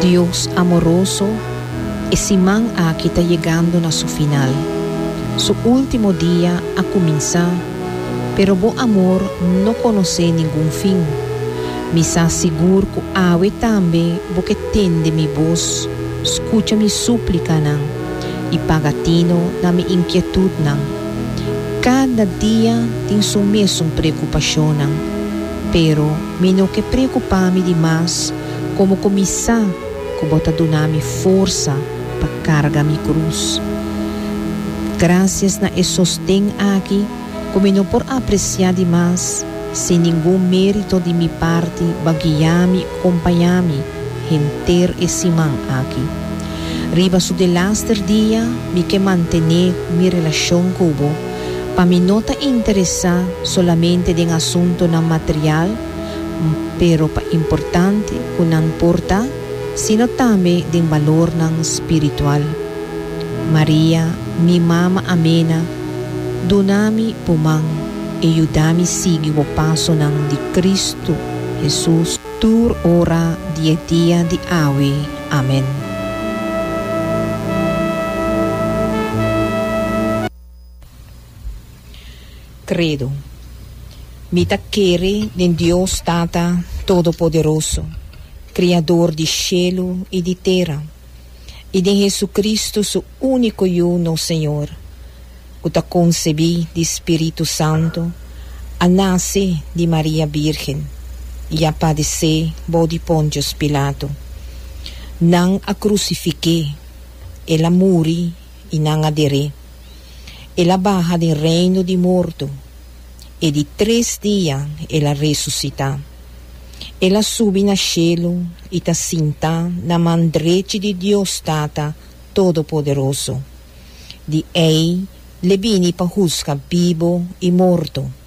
Dios amoroso, e siman aki ta yegando na su final. Su ultimo dia a cuminsa, pero bo amor no conoce ningun fin. Mi sa sigur cu awe tambe bo ke tende mi voz, scucha mi suplicanan y paga tino na mi inquietudnan. Cada dia tin su mesun preocupacionnan. Pero mi no ke preokupá mi di mas komo ku mi sa ku Bo ta duna mi forsa pa karga mi krus. Grasias na e sosten aki ku mi no por apresiá di mas, sin ningun mérito di mi parti Bo a guiá mi i kompañá mi henter e siman aki. Riba su delaster dia mi ke mantené mi relashon ku Bo, Pa mi no ta interesá solamente den asuntunan material, m pero pa importante ku nan por ta, sino tambe den balornan spiritual. Maria, mi mama amena, duna mi bo man e yuda mi sigui bo pasonan di Kristu Hesus tur ora di e dia di awe. Amen. Credo. Mi ta kere den Dios Tata Todopoderoso, Criador di shelu i di tera, i den Jesucristo su unico Yu nos Señor, cu ta concebi di Spiritu Santo, a nace di Maria Birgen, i a padece bou di Pontius Pilato. Nan a crucifiqu'é, el a muri, I nan a der'é, El a baha den reino di morto, e di tres dia El a resusitá. El a subi na shelu i ta sintá na man drechi di Dios Tata Todopoderoso. Di ei l'e bini pa husga bibo i morto.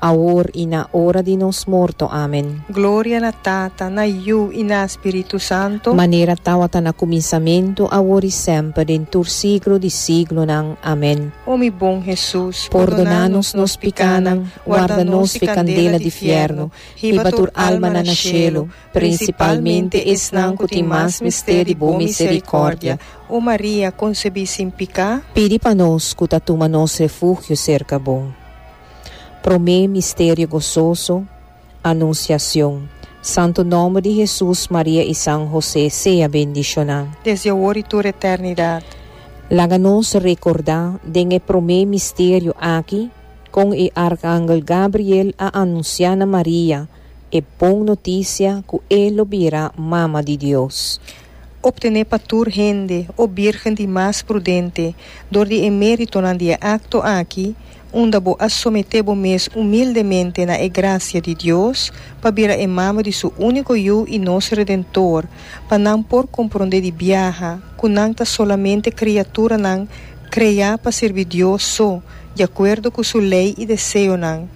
Awor i na ora di nos morto. Amen. Gloria na Tata, na Yu i na Spiritu Santo. Manera tawata na kuminsamentu, awor i semper, den tur siglo di siglonan. Amen. O mi bon Hesus, pordoná nos nos pikánan, warda nos fi kandela di fièrnu, hiba tur almanan na shelu, prinsipalmente esnan ku tin mas mester di bo miserikòrdia. O Maria, konsebí sin piká. Pidi pa nos ku ta tuma nos refugio serka bo. Promé misterio gososo, Anunsiacion. Santo nomber di Hesus, Maria i San José sea bendishoná. Desdi awor i tur eternidad. Laga nos recordá den e promé misterio aki con e arcangel Gabriel a anunciá na Maria e bon noticia cu e lo bira Mama di Dios. optené pa tur hende o bírgen di mas prudente dor di e méritonan di e akto aki, unda bo a someté bo mes umildemente na e grasia di Dios, pa bira e mama di Su úniko Yu i nos Redentor, pa nan por komprondé di biaha ku nan ta solamente kriaturanan kreá pa sirbi Dios so, di akuerdo ku Su lei i deseonan.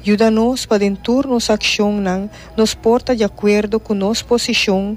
Yuda nos pa den tur nos akshonnan nos por ta di akuerdo ku nos posishon,